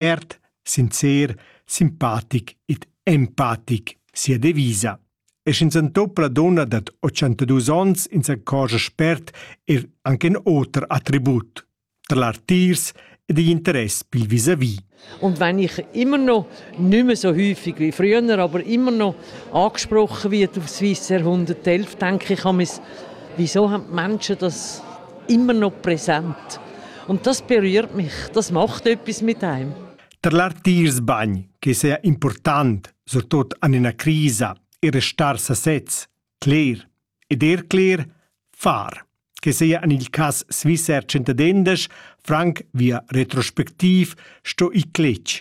ert, sincer, simpatic ed empatic sia devisa. E sch'ins antopla donna dad 82 onns in s'accorgia spert er anche in oter attribut, tra l'artirs ed igl interess pil vis-à-vis. Und wenn ich immer noch, nicht mehr so häufig wie früher, aber immer noch angesprochen wird aufs Swiss Jahrhundert 11, denke ich, wieso haben die Menschen das immer noch präsent. Und das berührt mich, das macht etwas mit einem. Tar l'artiers bagn, che sia important, surtut an ina crisa, e restar sasez, cler, ed er cler, far, che sia an il cas Swissair 110 Frank via retrospectiv sto i cletg,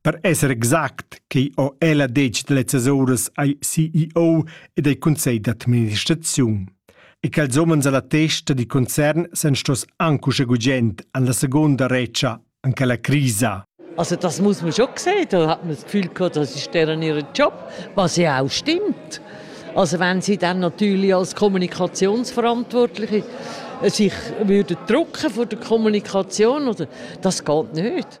Per esser exact quei ho ella detg lezzas uras ai CEO ed ai cunsegl d'administraziun. E ch'els umens alla testa di concern san stos anche usche gugent an la seconda retscha an quella crisa. Also das muss man schon sehen, da hat man das Gefühl gehabt, das ist deren ihren Job, was ja auch stimmt. Also wenn sie dann natürlich als Kommunikationsverantwortliche sich würden drücken vor der Kommunikation, oder, das geht nicht.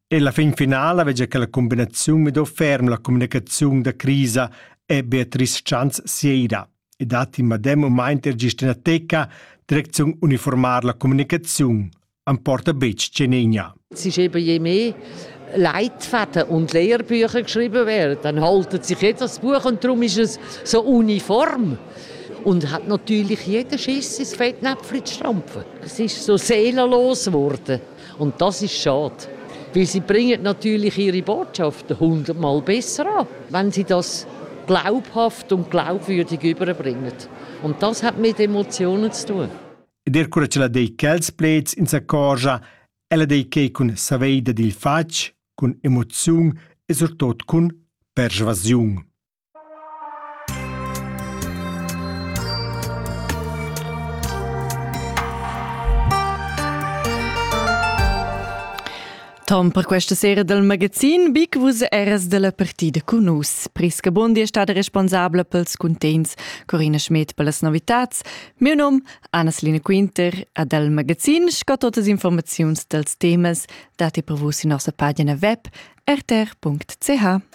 E la fin finala vegia che la combinaziun mido ferm la communicaziun da crisa e Beatrice Chans Sieira. E datti madem u mainter gist ina teca, direcziun uniformar la communicaziun am porta betg Cenenia. Es ist eben je mehr Leitfaden und Lehrbücher geschrieben werden, dann haltet sich jeder das Buch und darum ist es so uniform. Und hat natürlich jeden Schiss ins Fettnäpfchen zu stampfen. Es ist so seelenlos geworden. Und das ist schade. Weil sie bringen natürlich ihre Botschaft hundertmal besser an, wenn sie das glaubhaft und glaubwürdig überbringen. Und das hat mit Emotionen zu tun. Der cura ce la dei quels plets in sa corgia, ella dei chei cun saveida dil fatg, cun emoziun e surtot cun persvasiun. Tom per questa sera del magazin Big Vus eras della partida con us. Prisca Bundi è stata responsabile pels contents Corina Schmidt per las novitats. Mio nom Anna-Selina Quinter a del magazin sco totes informaziuns dels temas dati per vus in nostra pagina web rtr.ch.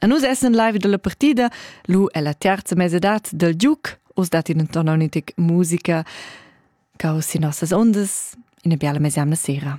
A nus essan live dalla partida lu ella terza mesedad del Duke. Os dat in intorno a un'antica musica che ho sin nossas ondas in una bella mesemna sera.